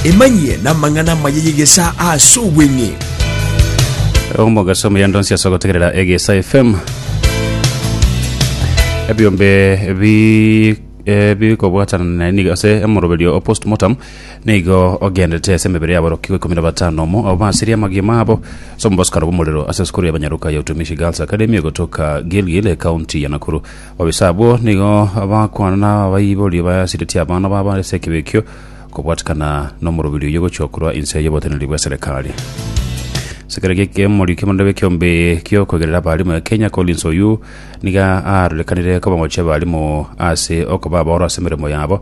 Emanyie namang'ana amaya y'egesaa ase obweng'e. omogaso omuya ndonsi ase ogotegerera egesa fm ebiombe bi- eh, bikobwatana naye nigo ase omoroberio o postmortem nigo ogendete ase emebere yabo rokigwa ikomi na batano omo abo basirie amagio mabo ase omobosokano bw'omorero ase esukuru y'abanyaruka ya utumishi girls academy egotoka gilgil ekaunti ya nakuru Babisa abwo nigo bagakwana n'abaiboria bayasiretie abana babo ase ekebeyo ekio, kobwatikana n'omorobiri oyio gochia korwa inse y'oboteneneri bw'eserekari. Sekera gi'ekemori ki'amarende b'ekiombe gi'okwegerera abarimu ya Kenya Collins Oyuu niga arorekanire koba ngochia abarimu ase okoba abaoro ase emeremo yabo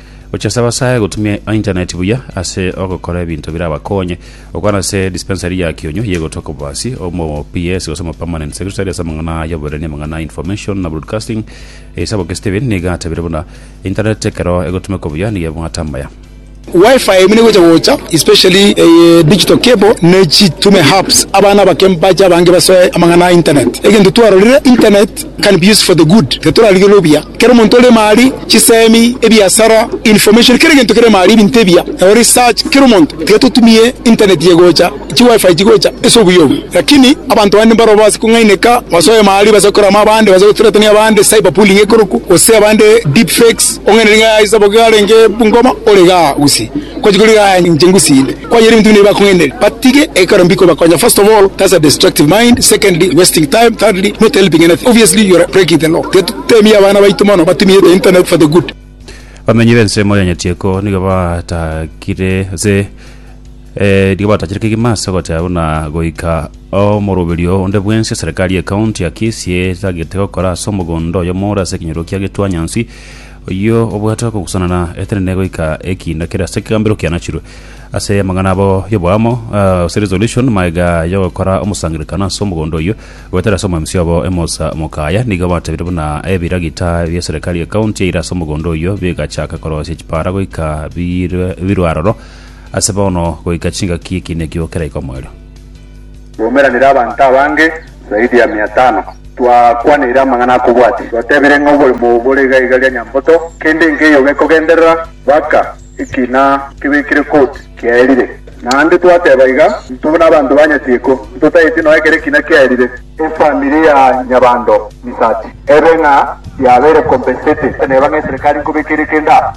Gochia saba sae gotumia internet buya ase ogokora ebinto birabakonye. Okwana ase dispensary ya kionyo ye gotwa kobasi, omo PS gose omo permanent secretary ase amang'ana aya oboreri amang'ana a information na broadcasting. Eisaboko Steven niga atabire buna, Internet ekero egotumekwa buya nigo ebwate amaya. Wi-Fi buna egocha gocha especially eye digital cable nechitume hubs abana abake mbache abange basoe amang'ana a internet. Egento twarorire, internet can be used for the good, titorarigerwe obuya. Kera omonto oremo aria, chisemi, ebiasara, information, kera egento keremo aria, ebinto ebiya, nabo research, kera omonto. Tiga totumie internet ye gocha, chi wifi chigocha ase obuya obo. Lakini abanto bande mbaro base kong'aineka, base oema aria, base gokora ama abande, base gothreaten abande, cyber bullying ekorokwa, gose abande deep fakes, ong'ainire ng'a aye sabo iga arenge Bungoma, ore igaa gusii. Kwati kori aya inche ngusinde kwayera ebinto buna ebi bakong'ainera batige ekero mbikobakonya first of all that's a destructive mind secondly wasting time thirdly not helping anything obviously you're breaking the law tiga tutemie abana baito mono batumie the internet for the good Abamenyi b'ensemo ya Nyatieko nigo batakire ase eh, nigo batachire kegima ase ogoteba buna goika omoroberio onde bwensi eserekari y'ekaunti ya Kisii etagete gokora ase omogondo oyomo ore ase ekenyoro kia Getuanyansi Oyio obwate okogusanana etenene goika ekiina kere ase ekegambero kianachirwe ase amang'ana abo y'oboamo, gose resolution, magega y'ogokora omosangererekano ase omogondo oyio, goetera ase omwemsi obo emosa omokaya. Nigo batebire buna ebiragita bia eserekari y'ekaunti yaire ase omogondo oyio bigachaka korosia chipara goika birwe birwe aroro ase bono goika chingaki ekiina ekio keraike omoerio. Twaumeranire abanto abange zaidi ya mia tano, twakwaneire amang'ana akobwatia, twatebire ng'a oborimo obo bore iga iga ria nyamboto, kende nkeiyo gekogenderera mpaka ekina kebekire koti kiaerire. Naende twateba iga, Intwe buna abanto ba nyatieko, ntotaeti nonya kera ekina kiaerire. Efamiri ya Nyabando Misati ebe ng'a yabeire compensated, neba ng'a eserekari nkobekere kende aa.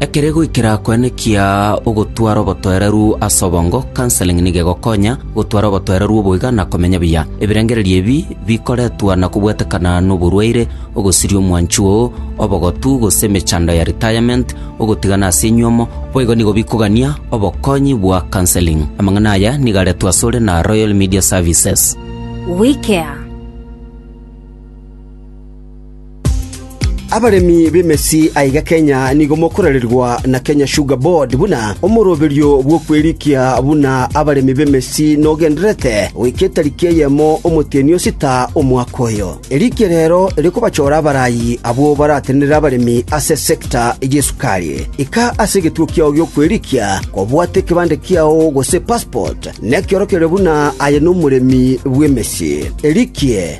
Ekere goikera koenekia ogotwara obotoereru ase obongo, counseling nigo egokonya gotwara obotoereru oboiga na komenya buya. Ebirengererio ebi bikoretwa na kobwetekana noborwaire, ogosiria omwanchi oo, obogotu, gose emechando ya retirement, ogotigana ase enywomo, boigo nigo bikogania obokonyi bwa counseling. Amang'ana aya nigo aretwe asore na Royal Media Services. WeCare. Abaremi b'emesi aiga Kenya nigo mokorererwa na Kenya Sugar Board buna omoroberio bw'okwerikia buna abaremi b'emesi nogendererete goika etariki eyemo omotienyi o sita omwaka oyo. Erikia rero rikobachora abarayi abwo baratenenere abaremi ase sector y'esukari. Ika ase egetuo kiao gi'okwerikia kobwate ekebande kiao gose passport nekiorokererio buna aye nomoremi bw'emesi. Erikie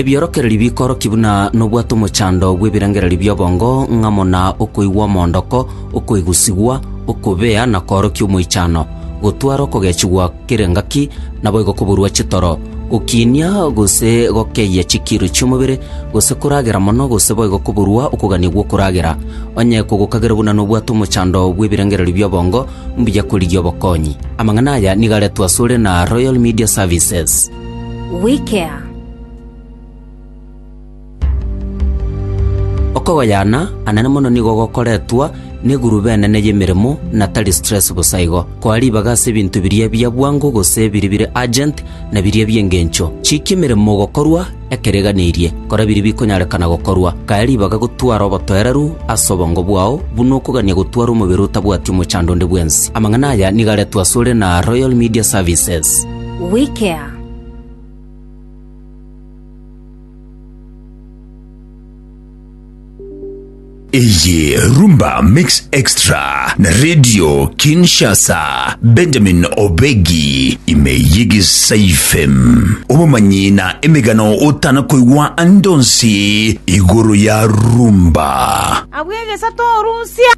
Ebiorokererio bikoorokia buna nobwate omochando bw'ebirengererio bi'obongo, ng'amo na okoigwa omoondoko, okoigusigwa, okobea na koorokia omoichano, gotwara okogechigwa kere engaki, naboigo koburwa chitoro, gokiinia gose gokeyia chikiiro chi'omobere, gose koragera mono, gose boigo koburwa okogania gw'okoragera. Onye kogokagera buna nobwate omochando bw'ebirengererio bi'obongo, Mbuya korigia obokonyi. Amang'ana aya nigo aretwe asore na Royal Media Services. We care. Okogoyana anene mono nigo gokoretwa n'egurube enene y'emeremo na tari stress bosa igo. Koa ribaga ase ebinto biria bia bwango gose biri bire urgent na biria bi'engencho. Chikia emeremo gokorwa Ekereganerie, kora biria bikonyarekana gokorwa. Kaya ribaga gotwara obotoereru ase obongo bwao, buna okogania gotwara omobere otabwati omochando onde bwensi. Amang'ana aya nigo aretwe asore na Royal Media Services. Wikea. Eye Rumba Mix Extra na Radio Kinshasa Benjamin Obegi ime y'egesaifem obomanyi na emegano otana koigwa andonsi igoro ya rumba. Abwo egesato orusia.